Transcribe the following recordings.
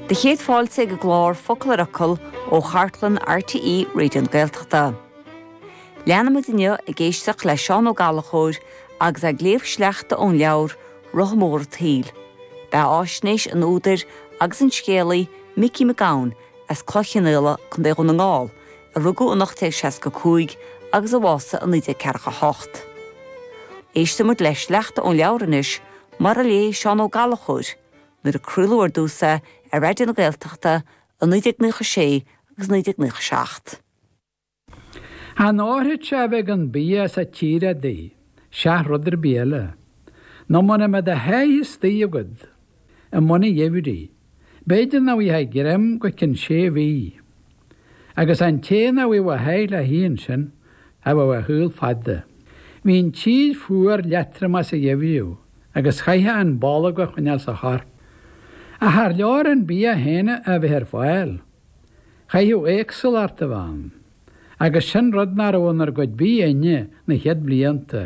Do chéad fáilte ag an gclár Focal ar Fhocal ó chartlann RTÉ Raidió na Gaeltachta. Leanfaimid inniu ag éisteacht le Seán Ó Gallachóir agus é ag léamh sleachta ón leabhar Rotha Mór a' tSaoil, beathaisnéis an údair agus an scéalaí Micí Mac Gabhann as Cloich Chionnaola, Co. Dhún na nGall, a rugadh in 1865 agus a bhásaigh in 1948. Éistfimid le sleachta ón leabhar anois Mar a léigh Seán Ó Gallachóir nuair a craoladh ar dtús é ar Raidió na Gaeltachta i 1996 agus 1997. Chan áithrid é a bheith gan bia sa tír adaí, seach rud ar bith eile. Nó mura mbeadh do sháith istigh agat, i mbun an gheimhridh, b'fhéidir nach bhfuighfeá greim go cionn sé mhí. agus an té nach bhfuigheadh a sháith le hithe ansin cha bheadh a shaol fada. Bhí an tír fuar leatromach sa gheimhreadh agus chaithfeá an bolg a choinneáil sa chorp. Ach char leor an bia féin a bheith ar fáil, chaithfeadh éagsúlacht a bheith ann, agus sin rud nach raibh inár gcuid bídh inne na chéad blianta.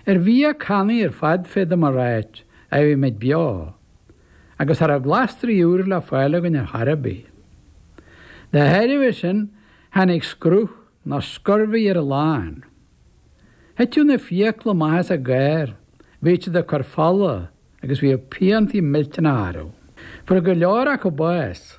Ar bhia cannaí ar fad féadaim a ráit a bhí muid beo. agus cha raibh glasraí úra le fáil againn ar chor ar bith. De thairbhe sin, tháinig scruth nó scurvy ar a lán. Thiteadh na fiacla amach as a gcáir, bhíodh siad ag cur fola agus bhíodh piantaí millteanacha orthu. Fuair go leor acu bás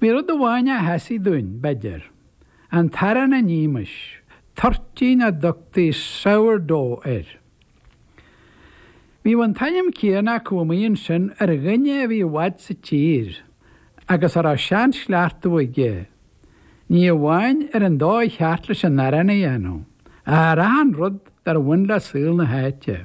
Bhí rud amháin a sheasaigh dúinn, b'fhéidir, an t-arán a nímis, toirtín a dtugtaí sourdough air. Bhíodh an t-ainm céanna acu amuigh ansin ar dhuine a bhí i bhfad sa tír agus a raibh seanchleachtadh aige, ní amháin ar an dóigh cheart leis an arán a dhéanamh, ach ar achan rud dár bhain le saol na háite.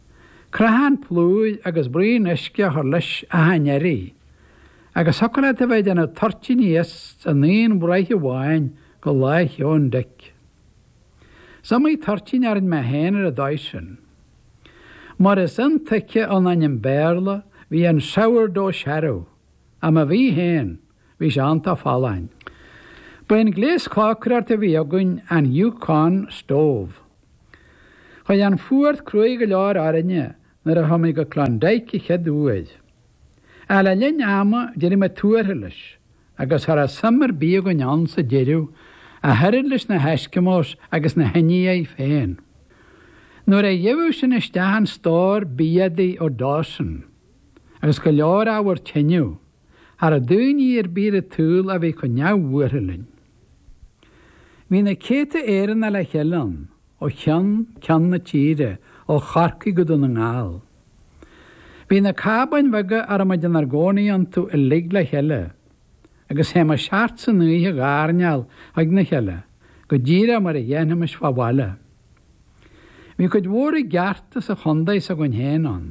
Crothán plúir agus braon uisce a chur leis achan iarraidh, agus thiocfadh leat a bheith ag déanamh toirtíní as an aon bhraich amháin go Lá Sheoin Dic. Is iomaí toirtín a rinne mé féin ar an dóigh sin. Mar is intuigthe ón ainm Béarla, bhí an 'sourdough' searbh, ach má bhí féin, Bhí sé iontach folláin. Ba é an gléas cócaireachta a bhí againn an Yukon Stove. Chuaigh an fuacht cruaidh go leor orainne nuair a chuaigh muid go Klondike a chéaduair. Ach le linn ama d'éirigh muid tuartha leis, agus cha raibh suim ar bith againn ann sa deireadh, ach oiread leis na hEskimos agus na hIndiaigh féin. Nuair a gheibheadh sinn isteach an stór bia adaí ó Dawson, agus go leor ábhar tineadh, Cha raibh daoine ar bith ar an tsaol a bhí chomh neamhbhuartha linn. Bhí na céadta Éireannaigh le chéile ann, ó cheann ceann na tíre, ó Chorcaigh go Dún na nGall. Bhí na cábáin bheaga a raibh muid inár gcónaí iontu uilig le chéile, agus théimis thart san oíche ag airneál chuig na chéile, go díreach mar a dhéanfaimis fá bhaile. Bhí cuid mhór i gceart as an chontae s'againn féin ann.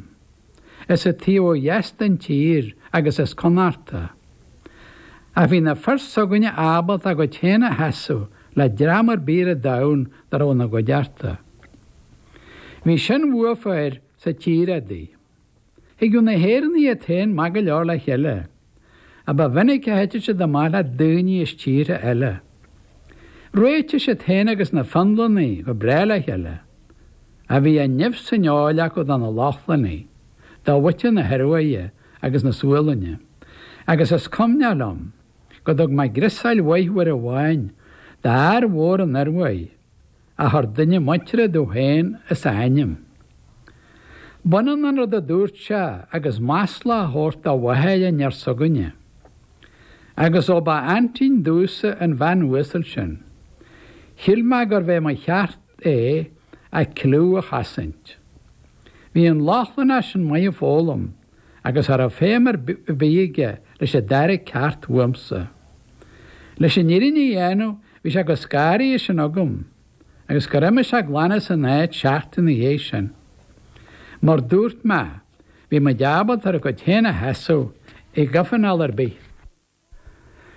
As an taobh ó dheas den tír agus as Connachta. Ach bhí na fir s'againne ábalta a gcuid féin a sheasamh le dream ar bith ar an domhan dá raibh ina gcuideachta. Bhí sin uathu sa tír udaí. Thigeadh na hÉireannaigh iad féin maith go leor le chéile, ach ba mhinic a thiteadh siad amach le daoine as tíortha eile. Réitíodh siad féin agus na Fionlannaigh go breá le chéile, ach bhí an nimh san fheoil acu do na Lochlannaigh, do mhuintir na hIoruaidhe agus na Sualainne, agus is cuimhneach liom go dtug mé griosáil mhaith uair amháin d'fhear mhór ón Ioruaidh, a chuir duine muinteartha domh féin as a ainm. B'ionann an rud a dúirt sé agus masla a thabhairt do mháthair an fhir s'againne. Agus ó ba aintín domhsa an bhean uasal sin, shíl mé gurbh é mo cheart é a cliú a chosaint. Bhí an Lochlannach sin maith ag foghlaim agus cha raibh feidhm ar bith aige leis an dara ceacht uaimse. Leis an fhírinne a dhéanamh bhí sé chomh scanraithe sin agam agus gur imigh sé glan as an áit seachtain ina dhiaidh sin. Mar dúirt mé, bhí muid ábalta ár gcuid féin a sheasamh i gcomhthionól ar bith.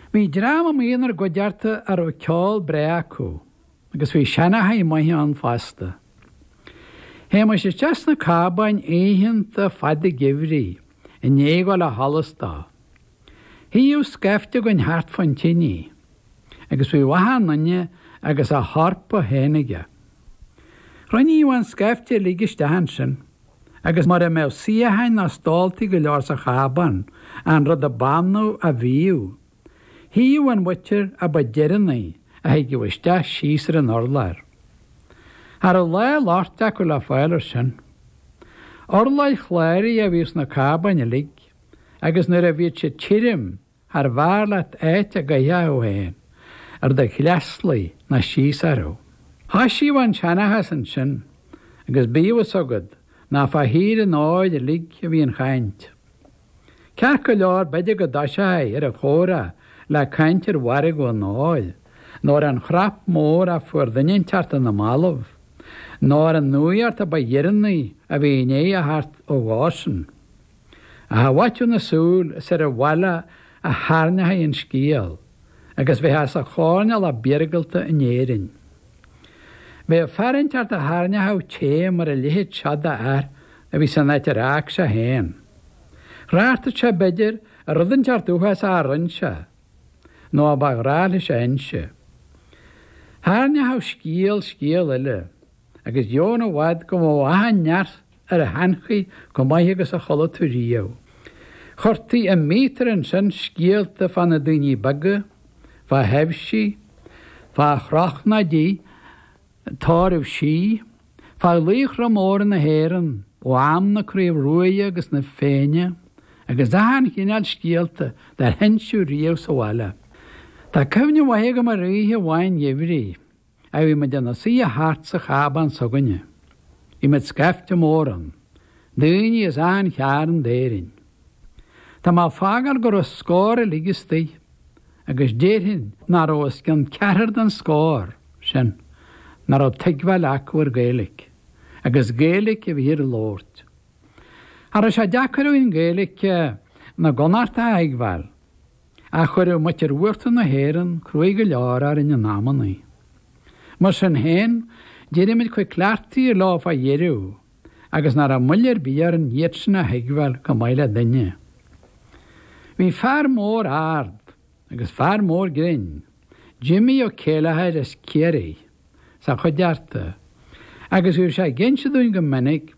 Bhí dream amuigh inár gcuideachta a raibh ceol breá acu, agus bhí seanchaithe maithe ann fosta. Théimis isteach sna cábáin oícheanta fada geimhridh i ndiaidh dul ó sholas dó. Shuíodh scaifte againn thart fán tinidh, agus bhíodh achan duine agus a hEorpa féin aige. Chruinníodh an scaifte uilig isteach ansin. agus mura mbeadh suíocháin ná stóltaí go leor sa chábán, an rud ab annamh a bhíodh. Shuíodh an mhuintir a ba deireanaí a thigeadh isteach síos ar an urlár. Cha raibh lá loicht acu le fáil air sin. Urláir chláraigh a bhíodh sna cábáin uilig, agus nuair a bhíodh siad tirim charbh fhearr leat áit a gcaithfeá thú féin ar do shleasluí ná síos orthu. Thoisíodh an seanchas ansin, agus bíodh a fhios agat nach fá thír an óir uilig a bhí an chaint. Ceart go leor b'fhéidir go dtoiseofaí ar an chomhrá le caint ar mhargadh an óir, nó ar an chnap mór a fuair duine inteacht ar na mallaibh, nó ar an nuaíocht a ba dheireanaí a bhí i ndiaidh a theacht ó Dhawson. Ach i bhfaiteadh na súl, is ar an bhaile a thairneofaí an scéal, agus bheith as an choirnéal ab iargúlta in Éirinn. Bheadh fear inteacht a thairneódh é mar a leithéid seo d'fhear a bhí san áit ar fhág sé féin. Thráchtadh sé, b'fhéidir, ar rud inteacht uafásach a rinn sé, nó a ba ghnách leis a inse. Thairneódh scéal scéal eile, agus gan i bhfad go mba mhaith an neart ar a heanchaí chomh maith agus a chuala tú riamh. Chuirtí i míotar ansin scéalta fá na daoine beaga, fá thaibhsí, fá shochraidí, tórraimh sí, fá laochra móra na hÉireann ó am na Craobh Ruaidhe agus na Féinne agus achan chineál scéalta dár hinseadh riamh sa bhaile. Tá cuimhne mhaith agam ar oíche amháin gheimhridh. a bhí muid inár suidhe thart sa chábán s'againne. Bhí muid scaifte mór ann. Daoine as achan chearn d'Éirinn. Tá mé ag fágáil go raibh scór uilig istoigh, agus déarfainn nach raibh os cionn ceathrar den scór sin nach raibh tuigbheáil acu ar Gaeilge, agus Gaeilge a bhíthear a labhairt. Cha raibh sé deacair againn Gaeilge na gConnacht a thuigbheáil. Ach chuireadh muintir uachtar na hÉireann cruaidh go leor orainn in amannaí. Mar sin féin, d'éirigh muid chomh cleachtaithe leo fá dheireadh, agus nach raibh moill ar bith orainn iadsan a thuigbheáil chomh maith le duine. Bhí fear mór ard, agus fear mór grinn, Jimmy Ó Céilleachair as Ciarraí, sa chuideachta, agus bhíodh sé ag inse dúinn go minic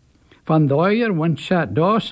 fán dóigh ar bhain sé Dawson